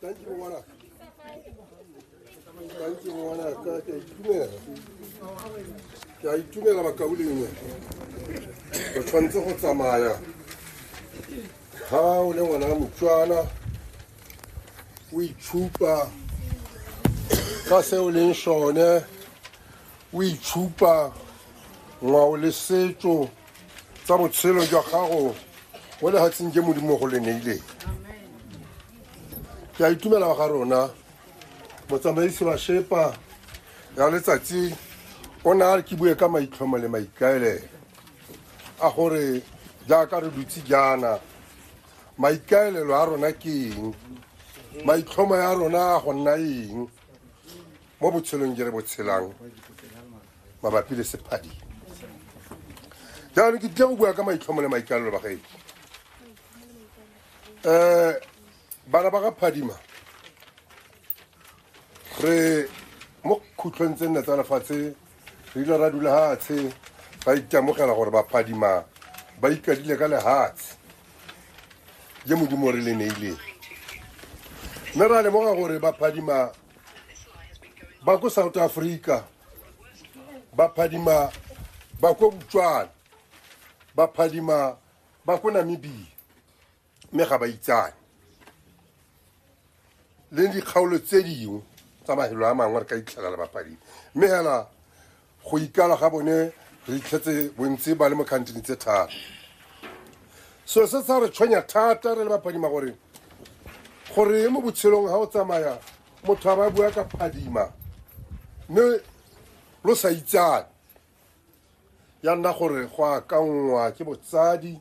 Thank you, Warner. Thank you, Warner. Thank you. Ke a itumela bakaulengwe o tshwanetse go tsamaya ga o le ngwana wa motswana o itshupa ka se o leng sone o itshupa ngwao le setso tsa botshelo jwa gago mo lefatsheng ke modimo go le neileng ke a itumela wa ga rona motsamaisi wa shepa ya letsatsi o ne a re ke bue ka maitlhomo le maikaelelo a gore jaaka re dutse jaana maikaelelo a rona ke eng maitlhomo ya rona a go nna eng mo botshelong je re bo tshelang mabapi le sephadi jaanong ke tlile go bua ka maitlhomo le maikalelo ba gaedi um eh, bana ba ga phadima re mo khutlhong tse nne tsa lefatshe re ile ra dula hatshe ra ikamogela gore baphadima ba ikadile ka lehatshe je modimo re le neileng mme ra lemoga gore baphadima ba ko south africa ba phadima ba ko botswana ba phadima ba ko namibia mme ga ba itsane le dikgaolo tse dingwe tsa mafelo a mangwe re ka itlhelela bapadimi mme hela Go ikala ga bone re itlhetse bontsi ba le mo khantini tse tharo. Seo se sa re tshwenya thata re le baphadima gore gore mo botshelong ga o tsamaya motho a ba bua ka phadima mme lo sa itsane ya nna gore go akanngwa ke botsadi